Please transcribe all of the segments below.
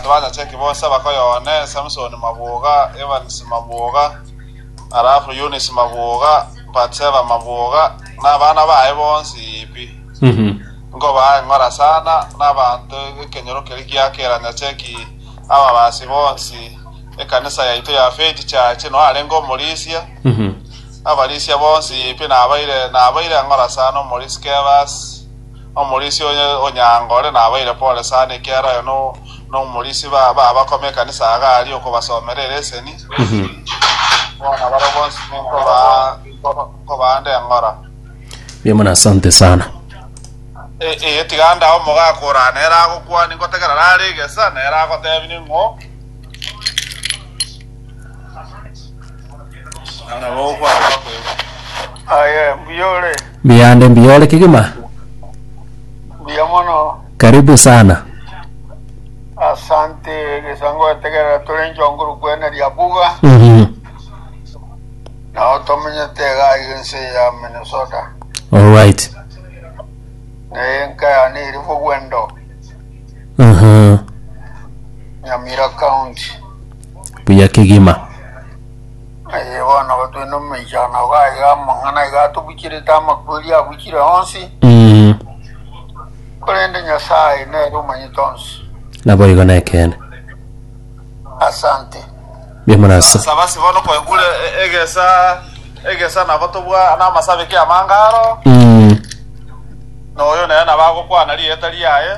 Tibanyache ki bonsi bakoya one, Samsoni mabwoga, Evans mabwoga, alafu Eunice mabwoga, Batseba mabwoga, na abana baye bonsi pi. Nkobaa eng'ora sana, na abanto ekenyoro keria kia keranyache ki ababasi bonsi, ekanisa yaito ya Faith Church, noyo arenge omorisia, abarisia bonsi pi, nabaire nabaire eng'ora sana omorisia Kebas, Omorisia oye o Nyangore nabaire pole sana, ekiara oye nomorisia b'abakoma ekanisa iga aria okobasomera ereseni, bono barabwo bonsi nkobaande eng'ora. Mbuya mono asante sana. Eye tiga ndae omogaka oraa nere agokwania ngotegera rare egesa nere agotebinie ng'o. Nabo okwara bakoigwa. Aye, mbuya ore. Biyande mbiyore kigima. Mbuya mono. Karibu sana. Asante gesango etegerera tore nchonguru kwene ria buga. Mhm. Nao tomenyete gai ense ya Minnesota. All right. Naye enka yane iri bogwendo Mhm. Nyamira County. buya kegima. Aye bono igo twende omomechano iga aiga amang'ana aiga atobucherete amakweri abuchire onsi, Mm, korende Nyasaye nere omanyete onsi. naboigo nekeene. Asante. Mbuya mono ase. Saba ase bono kwegure e- egesa egesa nabo tobwa namasabeke amange aro, Mm, na oyo nere nabo agokwana rieta riaye.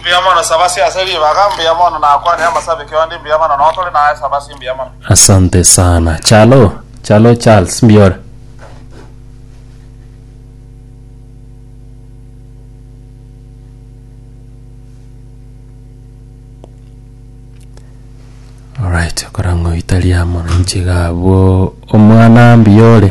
Mbuya mono Sabasi ase ribaga, mbuya mono nakwane amasabe kionde, mbuya mono notore naye Sabasi, mbuya mono. Asante sana. Chalo, Chalo Charles, mbiore. Alright, okorangoitaria mwananchi gabo omwana mbiore.